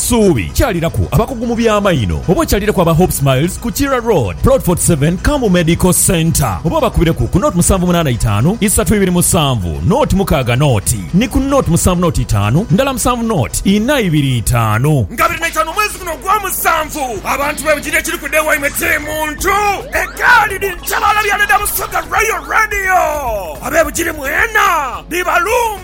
Suubi, kyaliraku abakugu mu by'amaino oba okyalireku aba Hope Smiles ku Kira Road, Plot 47, Kambu Medical Centre oba obakubireku ku nought musanvu munaana itaanu isatu ibiri musanvu nought mukaaga nought ni ku nought musanvu nought itaanu ndala musanvu nought ina ibiri itaanu. Nga abiri naitaanu omwezi guno ogwomusanvu, abantu bebujirire ekiri ku dee waimwe kiri muntu egaali dhi njabaala byane dha Busoga Royal Radio abebujiri mwena dhibalumbe.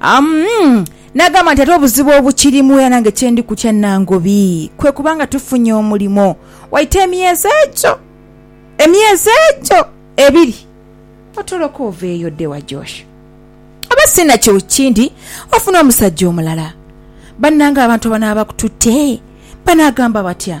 Amm n'agamba nti ate obuzibu obukirimu era nange kyendi kutya Nangobi kwe kuba nga tufunye omulimo waita emyezi egyo emyezi egyo ebiri otoloke oveeyo odde wa Josh oba si nakyo kindi ofune omusajja omulala. Bannange abantu abanaaba bakututte banaagamba batya?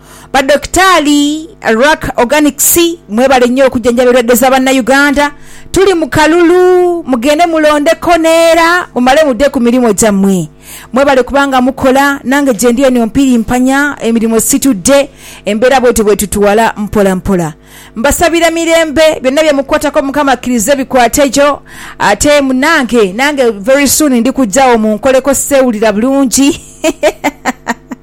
Ba Dokitaali, Ruck Organics mwebale nnyo okujanjaba endwadde za Bannayuganda. Tuli mu kalulu, mugende mulondeko neera mumale mudde ku mirimu gyammwe. Mwebale kuba nga mukola, nange gyendi eno mpirimpanya emirimu situdde, embeera bwetyo bwetutwala mpola mpola. Mbasabira mirembe, byonna bye mukwatako Mukama akkirize bikwategho ate munnange nange very soon ndi kujjagho munkoleko sseewulira bulungi.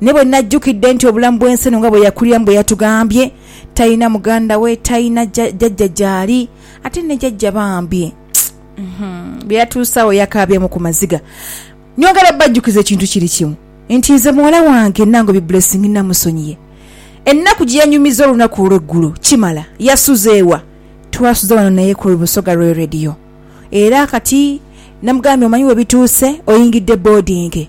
Naye bwe najjukidde nti obulamu bw'ensi eno nga bwe yakuliramu bwe yatugambye, talina muganda we, talina jajja gy'ali, ate ne jajja bambi bye yatuusaawo yakaabyemu ku maziga. Nyongera obbajjukiza ekintu kiri kimu nti nze muwala wange Nangobi Blessing nnamusonyiye. Ennaku gye yanyumiza olunaku olw'eggulo kimala yasuze wa? Twasuza wano naye ku Busoga Royal Radio era kati namugambye omanyi we bituuse oyingidde boodingi.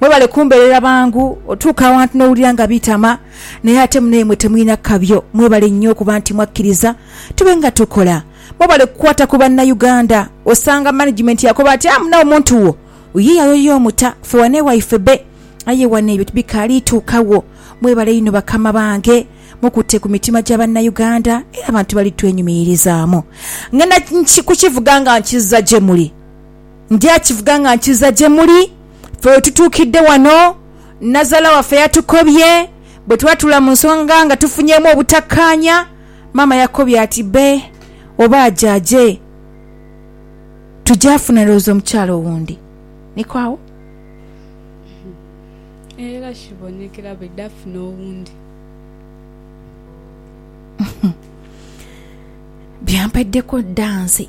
Mwebale kumbeerera bangu otuuka awantu n'owulira nga biitama naye ate munaimwe temulina kabyo. Mwebale nnyo okuba nti mwakkiriza tube nga tukola. Mwebale kukwata ku Bannayuganda. Osanga management yakoba ati amuna omuntu wo ye yayoya omuta ffe wano ewaife be. Aye wano ebyo tibikaali tuuka wo. Mwebale inho bakama bange. Mukutte ku mitima gya Bannayuganda era abantu bali twenyumiririzaamu. Ngenda kukivuga nga nkizza gye muli. Ndya kivuga nga nkiza gye muli. Ffe we tutuukidde wano, nnazaala waffe yatukobye bwe twatula mu nsonga nga tufunyeemu obutakkaanya. Maama yakobye ati, Bbe oba aje aje, tujaafuna ndowooza omukyala owundi. Niko agho. Era kibonekera bwe dafuna owundi. Byampeddeko dda nze.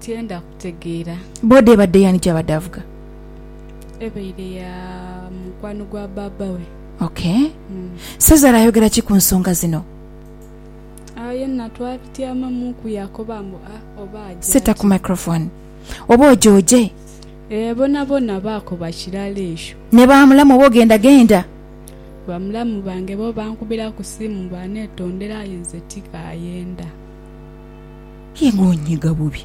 Tyenda kutegeera. Boda ebadde y'ani gy'abadde avuga? Ebaire ya mukwano gwa baaba we. Ok. Sezara ayogera ki ku nsonga zino? Agho yenna twabityamamuuku yaakoba mbu, A, oba aja Set up ki? microphone. Oba oja oje. Ee, boonaboona baakoba kirala ekyo. Ne ba mulamu oba ogenda genda. Bamulamu bange bo bankubira ku simu baaneetondera aye nze tikaayenda. Aye ng'onyiiga bubi!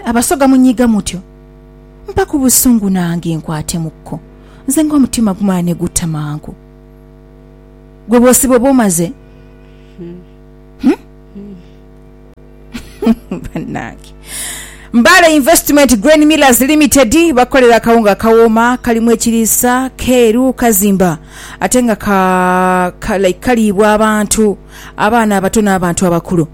Abasoga munyiiga mutyo? Mpaku busungu nange nkwatemukko, nze ng'omutima gumala ni gutta mangu. Gwe bw'osiba oba omaze? Bannange! Mbale Investment Grain Millers Limited bakolera akawunga akawooma, kalimu ekiriisa, keeru, kazimba ate nga ka, ka, like kaliibwa abantu, abaana abato n'abantu abakulu.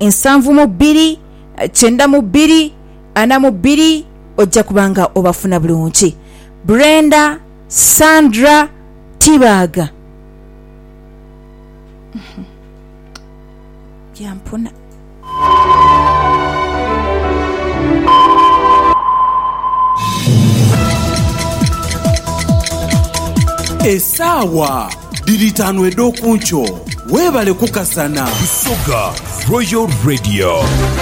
nsanvu mu bbiri, kyenda mu bbiri, ana mu bbiri ojja kuba nga obafuna bulungi. Brenda, Sandra, Tibaaga. Byampuna. Esaawa. Dhiri itaanu edh'okunkyo. Weebale kukasana. Busoga Royal Radio.